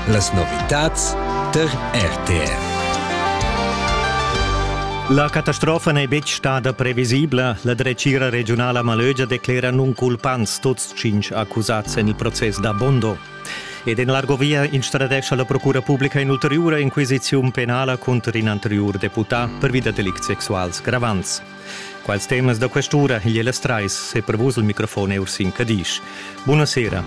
Las novitads tar RTR. La catastrofa n'è betg stada previsibla. La dretgira regiunala Malögia declera nunculpants tuts cinq accusads en il process da Bondo. Ed en l'Argovia instradescha la Procura publica in'ulteriura inquisiziun penala cunter in anteriur deputà pervi da delicts sexuals gravants. Quals temas da quest'ura igl Ellas Trais è per vus il microfon er sin Cadisch. Buona sera.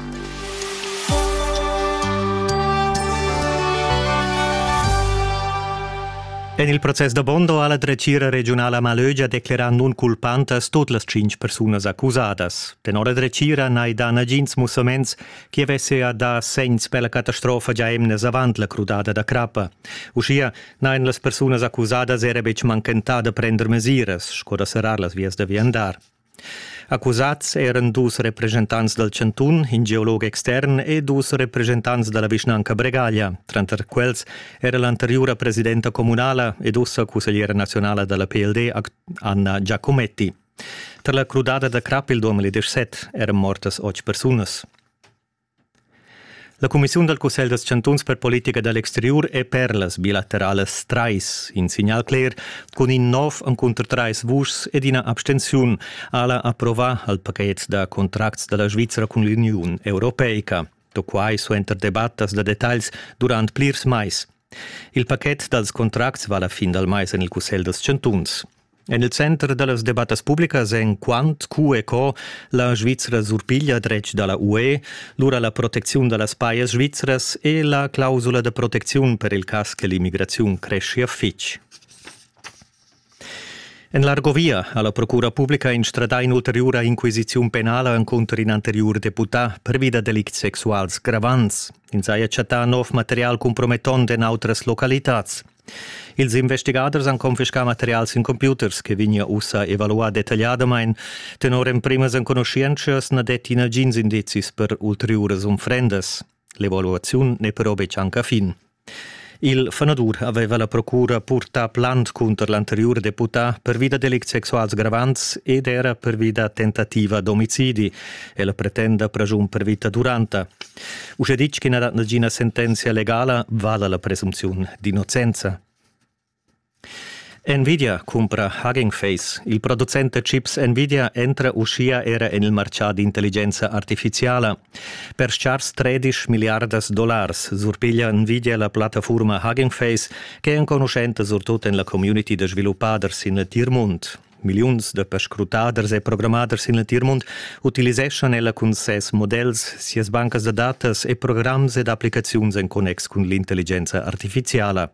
En il proces da Bondo ha la dretgira regionala Malögia declerà nunculpantas tut las cinc persunas accusadas. Tenor la dretgira n'hai dà nagins mussaments che avesse a dar segns per la catastrofa già emnes avant la crudada da crappa. Uschia Nein, las persunas accusadas era betg manchentà da prender mesiras sco da serrar las vias da viandar. Accusats eran dus representants dal chantun, in geolog extern e dus representants da la vischnanca Bregaglia, tranter quels era l'anteriura presidenta communala ed ussa cussegliera nazionala da la PLD Anna Giacometti. Tar la crudada da crap il 2017 eran mortas otg persunas. La cumissiun dal cussegl dals chantuns per politica da l'exteriur è per las bilateralas trais in signal cler cun in nov encunter trais vuschs ed ina abstenziun. Ella approvà al pachet da contracts da la Svizra cun l'Uniun europeica. Da quai suenter debattas da detagls durant plirs mais. Il pachet dals contracts va la fin dal mais en il cussegl dals chantuns. En il center da las debattas publicas èn quant, cu e co la Svizra surpiglia dretg da la UE, lura la protecziun da las pajas svizras e la clausula da protecziun per il cas che l'immigraziun creschia fitg. En l'Argovia ha la Procura publica instradà in'ulteriura inquisiziun penala encunter in anteriur deputà pervi da delicts sexuals gravants. Ins haja chattà nov material compromettont en autras localitads. Ils investigaders han confiscà materials sin computers che vegnia ussa evaluà detagliadamain. Tenor emprimas enconuschientschas na detti nagins indizis per ulteriuras unfrendas. L'evaluaziun n'è però betg anc a fin. Il fanadur aveva la procura purtà plant cunter l'anteriur deputà pervi da delicts sexuals gravants ed era pervi da tentativa d'omicidi. Ella pretenda pregiun per vita duranta. Uschè ditg ch'i na dat nagina sentenzia legala, vala la presumziun d'innocenza. Nvidia cumpra Hugging Face. Il producent da chips Nvidia entra uschia era en il martgà d'intelligenza artifiziala. Per schars 13 miliardas dollars surpiglia Nvidia la plattafurma Hugging Face, che è enconuschenta surtut en la community da sviluppaders sin il tir mund. Milliuns da perscrutaders e programmaders in l'entir mund utiliseschan ella cun ses models, sias bancas da datas e programs ed applicaziuns en connex cun l'intelligenza artifiziala.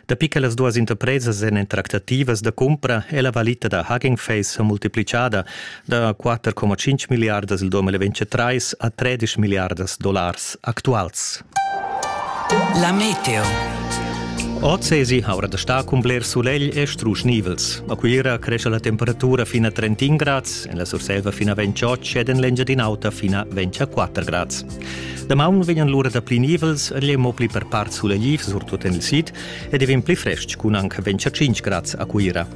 Dapi che las duas interpresas èn en tractativas da cumpra è la valita da Hugging Face sa multiplicada da 4,5 miliardas il 2023 a 13 miliardas dollars actuals. La meteo. Oz esi aura da star cun bler sulegl e strusch nivels. A Cuira cresce la temperatura fino a 31 grads, en la Surselva fino a 28 ed en l'Engiadin'Auta fino a 24 grads. Damaun vegnan l'ura da pli nivels, egl è mo pli per part sulegl surtut en il sid ed è vegn pli frestg cun anche 25 grads a Cuira.